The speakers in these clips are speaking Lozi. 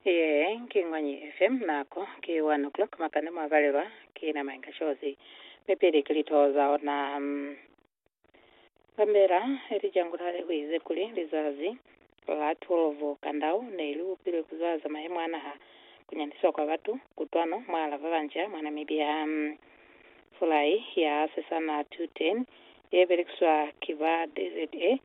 Ye ki Ñwanyi FM, nako ki 1 o'clock makande mwa palelwa ki nama inga cozi, mi pili ki litoho za ona. Kambela ili jangula le huize kuli lizazi la 12 kandau ne li upilwe ku zwaza mayemo a naha, ku nyandiswa kwa batu, kutwano mwala ba banca mwa Namibia. Fulai ya sesana 210 ye belekiswa ki ba DZA,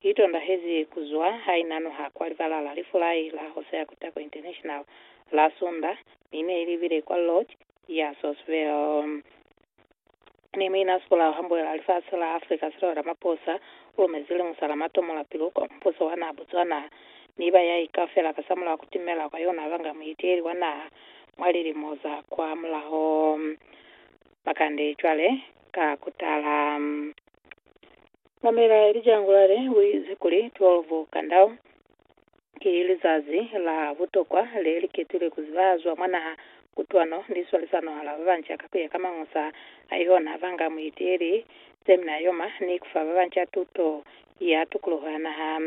i tondahezi ku zwa ha i nanuha kwa libala la lifulai la Hosea Kutako International la Sunda, mi ne i libile kwa Lodge ya Sourceville. Ne mu ina sipolao hambuela lifasi la Africa se lwa Ramaphosa u lumezi liñusa la matomola pilu kwa mubuso wa naha Botswana, mi ba ya ikaufela kasamulaho ku timela kwa yona ba nga muiteeli wa naha mwa lilimo za kwa mulaho. Bakande cwale ka kutala. Mamela Elijangulale uize kuli 12 Kandau ki lizazi la butokwa le li ketilwe ku ziba zwa mwa naha kutwano ni swalisano hala ba banca ka kuya ka mangusa a yona, banga muiti ili, semina yoma, ni kufa ba banca tuto ya tukuluho ya naha.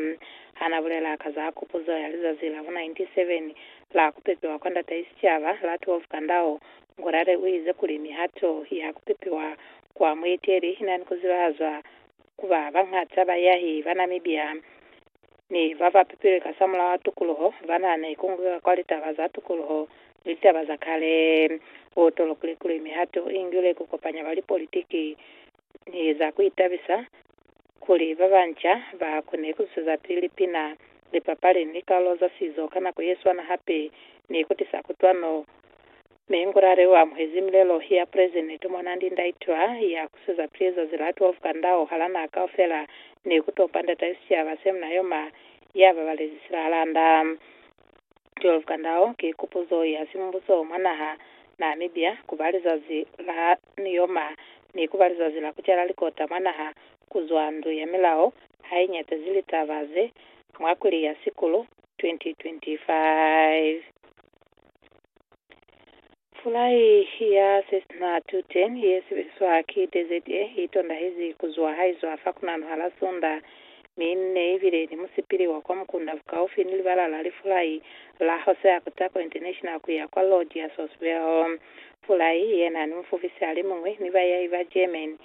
Ha na bulela ka za kupuzo ya lizazi la bo 97 la ku pepiwa kwa Ndatai Sicaba, Latwolf Kandao, Ngurare u ize kuli mihato ya ku pepiwa kwa mueteli i na ni ku zibahazwa ku ba bañata bayahi ba Namibia ni ba ba pepilwe kasamulaho wa tukuluho ba na ni ku ngweka kwa litaba za tukuluho ni litaba za kale. U tolokile kuli mihato i ngilwe ku kopanya ba lipolitiki ni za ku itabisa kuli ba banca ba kone ku zusezapili pina, lipapali, ni likalolo za sizo ka nako ye swana hape ni ku tisa kutwano. Mi Ngurare u amuhezi milelo ya President Monandi Ndaitwah ya ku susezapili zazi la 12 ka ndau hala naha kaufela ni ku tompa Ndata ya Sicaba Semna Yoma ya babalezi Silahalanda. 12 kandao ki kupuzo ya simbuso mwa naha Namibia kuba lizazi la niyoma ni kuba lizazi la kucela likota mwa naha kuzwa ndu ya milao hainyatezi litaba ze mwa kwili ya Sikulu 2025. Pulai ya Cessna 210 ye sebeliswa ki DZA i tondahezi ku zwa ha i zwa fa kunanu ha la Sunda, mi ne i bile ni musipili wa kwa mukunda bukaufi ni libala la lifulai la Jose Acutarco International ku ya kwa Lodi ya Sospel. Pulai ye na ni mufubisi alimuñwi ni bayahi ba German,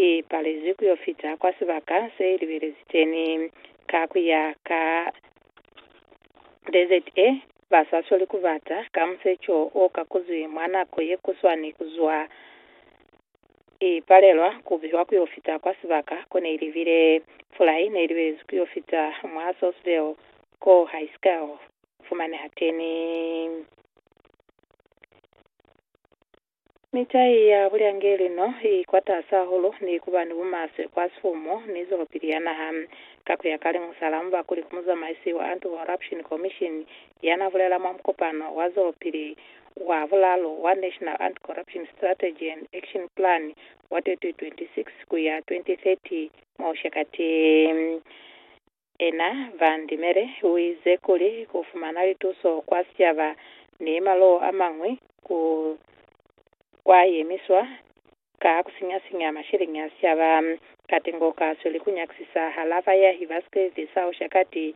I palezi ku yo fita kwa sibaka se i libelezi teni. Ka ku ya ka desert e ba sa sweli ku bata, ka museco o kakuzwi mwa nako ye kuswani ku zwa, i palelwa ku biwa ku yo fita kwa sibaka ko ne i libile. Fulai ne i libelezi ku yo fita mwa Sourceville ko hai si ka fumaneha teni. Mitai ya bulyangeli no i kwatasi hahulu ni kuba ni bumaswe kwa sifumu ni zwelopili ya naha. Ka kuya ka liñusa-la mubakuli ku muzamaisi wa Anti-Corruption Commission yana bulela mwa mukopano wa zwelopili wa bulalu wa National Anti-Corruption Strategy and Action Plan wa 2026-2030 mwa Oshakati, Ena Van Dimele uize kuli kufumana lituso kwa sicaba ni malo amañwi ku kwa yemiswa ka kusinya-sinya masheleñi a sicaba. Katengo kasweli kunyakisisa hala bayahi ba sikilidi sa Ushakati